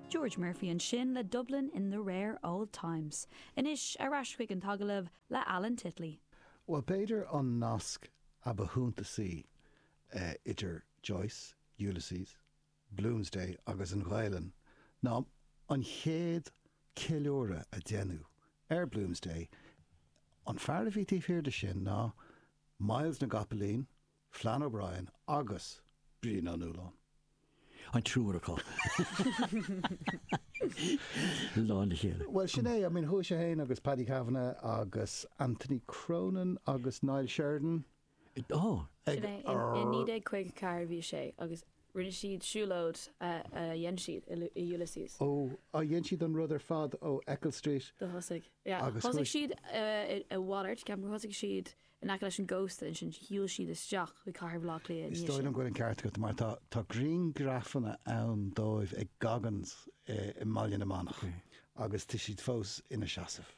George Murphy ansin le Dublin in the Rare Old Times. Anois, ar ais chuig an agallamh le Alan Titley. Bhuel, b'fhéidir an nasc a ba shuntasaí idir Joyce, Ulysses, Bloomsday agus an Ghaelainn ná an chéad ceiliúradh a deineadh ar Bloomsday, an fear a bhí taobh thiar de sin ná Myles na gCopaleen, Flann O'Brien agus Brian Ó Nualláin. An triúr acu i lár na chéile. Bhuel, sin é. I mean, chuaigh sé féin agus Paddy Kavanagh agus Anthony Cronin agus Niall Sheridan. Ó! Sin é. I 1954 a bhí sé agus rinne siad siúlóid a dhein siad i Ulysses. Ó, a dhein siad an rud ar fad ó Eccles Street? Do thosaigh. Yeah. Thosaigh siad i Waller, ceapaim. Thosaigh siad. in aice leis an gcósta, ansin shiúil siad isteach chuig cathair Bhaile Átha Cliath. Is dóigh liom go bhfuil an ceart agat, mar tá griangrafanna ann díobh ag Goggins i mBaile na Manach agus tá siad fós ina seasamh.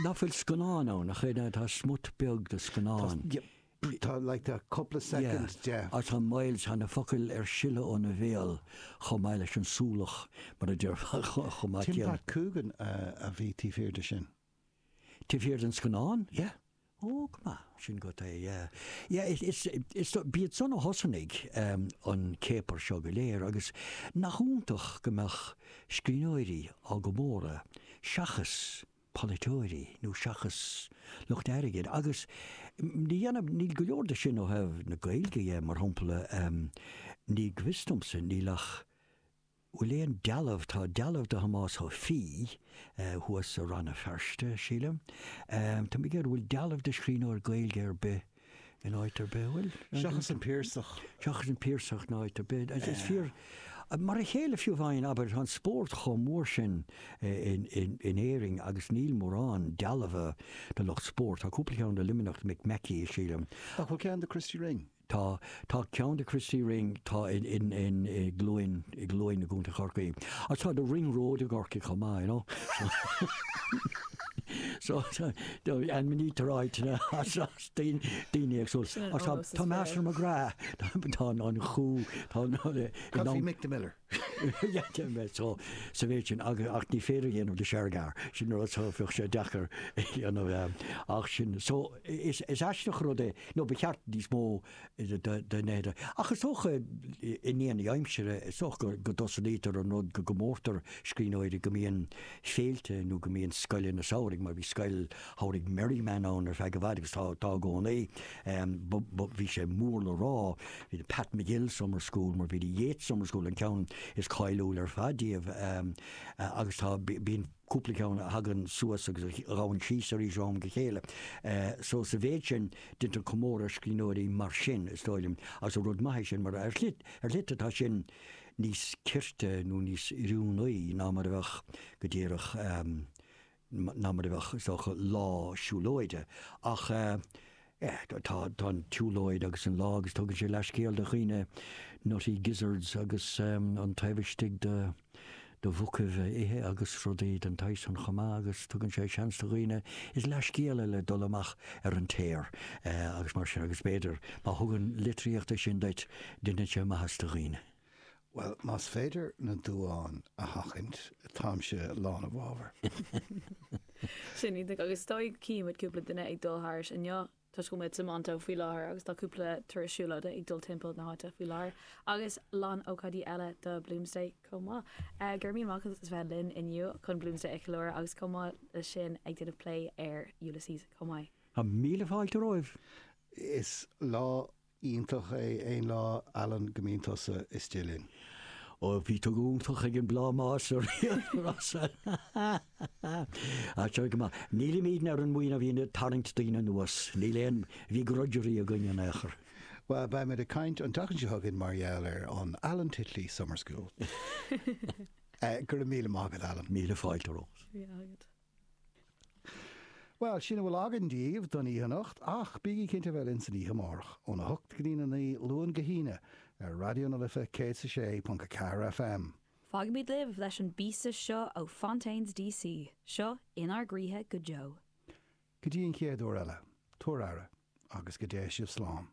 Nach bhfuil scannán ann, nach é? Tá smut beag de scannán. Tá, like, tá cúpla soicind de. Agus tá Myles, tá na focail ar sileadh óna bhéal chomh maith leis an súlach, mar a déarfá, chomh maith céanna. Tim Pat Coogan a bhí taobh thiar de sin. Taobh thiar den scannán? Yeah. Ó, go maith. Sin agat é, yeah. Yeah, is, is, is, b'iad san a thosnaigh um, an céipear seo go léir agus nach iontach go mbeadh scríbhneoirí á gcomóradh seachas polaiteoirí nó seachas lucht airgid agus ní dhéanann, níl go leor de sin ó thaobh na Gaeilge dhe, mar shampla, um, ní go bhfios domsa, níl ach. Bhfuil aon dealbh, tá dealbh de Thomás Ó Fiaigh thuas i Rann na Feirste, sílim. Tá mé ag iarraidh, bhfuil dealbh de scríbhneoir Gaeilge ar bith in áit ar bith, bhfuil? Seachas an Piarsach. Seachas an Piarsach in áit ar bith. Is fíor, mar a chéile fiú amháin, abair, tá an spórt chomh mór sin in Éirinn agus níl mórán dealbha de lucht spóirt, tá cúpla ceann i Luimneach, Mick Mackey, sílim. Ach bhfuil ceann de Christy Ring? Tá, tá ceann de Christy Ring, tá i, in, in, i gCluain, i gCluain i gContae Chorcaí. Agus tá The Ring Road i gCorcaigh chomh maith, you know. so, so, and we need to write, you know, as, as daoine, daoine ag súil. Sin an Agus tá, eolas is tá Master McGrath, tá, tá an, an chú, tá an, Mick the Miller. D'fhéadfadh mé so sa mhéid sin ach ní féidir a dhéanamh de Shergar. Sin an rud so bheadh sé deacair a dhéanamh ach sin. So is is aisteach rud é, nó ba cheart níos mó de nithe. Ach is dócha i ndéanaí na haimsire is dócha go dtosnaítear an rud go gcomórtar scríbhneoirí go mbíonn féilte nó go mbíonn scoileanna samhraidh mar bhí scoil Thabharfainn Merriman ann ar feadh i bhfad, agus tá i gcónaí. Bhí sé mór le rá. Bhí The Pat MacGill Summer School, mar bhí The Yeats Summer School, an ceann is cáiliúla ar fad díobh, agus tá, bíonn cúpla ceann a thagann suas agus a théann síos arís ó am go chéile. So, sa mhéid sin, déantar comóradh ar scríbhneoirí mar sin, is dóigh liom, agus rud maith é sin, mar ar shlite tá sin níos cirte nó níos oiriúnaí ná mar a bheadh, go díreach, ná mar a bheadh, is dócha, lá siúlóide. Ach eh tá an tsiúlóid agus an lá agus tugann sé leathscéal do dhaoine nutty gizzards agus an taobh istigh de mhucaibh a ithe agus rudaí den tsaghas san chomh maith agus tugann sé seans do dhaoine is leathscéal eile dul amach ar an téar agus mar sin agus b'fhéidir má thugann litríocht é sin duit deineann sé maitheas do dhaoine. Bhuel, más féidir na duáin a sheachaint, táimse lán i bhfabhar. Sin iontach, agus is dóigh go cífimid cúpla duine ag dul thairis inniu toisc go bhfuil muid san MoLI faoi láthair agus tá cúpla turas siúlóide ag dul timpeall na háite faoi láthair agus lán ócáidí eile do Bloomsday chomh maith. Go raibh míle maith agat as bheith linn inniu chun Bloomsday a cheiliúradh agus chomh maith leis sin ag déanamh plé ar Ulysses chomh maith. Míle fáilte romhaibh. Is lá iontach é aon lá Alan go mbíonn tusa istigh linn. Ó, bhí tú iontach ag an bplámás ar aon nós! An-mhaith go maith, nílimidne ar an mbuíon a bhíonn ag tarraingt daoine anuas, níl aon bhegrudgery againn in aon chor. Bhuel, beimid ag caint an tseachtain seo chugainn mar gheall ar an Alan Titley Summer School. Go raibh míle maith agat, Alan. Míle fáilte romhat. Bhuel, sin a bhfuil againn daoibh don oíche anocht, ach bígí cinnte a bheith linn san oíche amárach, óna hocht go dtí'n a naoi, Luan go hAoine, ar Raidió na Life 106.4 FM. Fágfaimid sibh leis an bpíosa seo ó Fontaines D.C. Seo In ár gCroíthe go deo. Go dtí an chéad uair eile, tabhair aire, agus go dté sibh slán.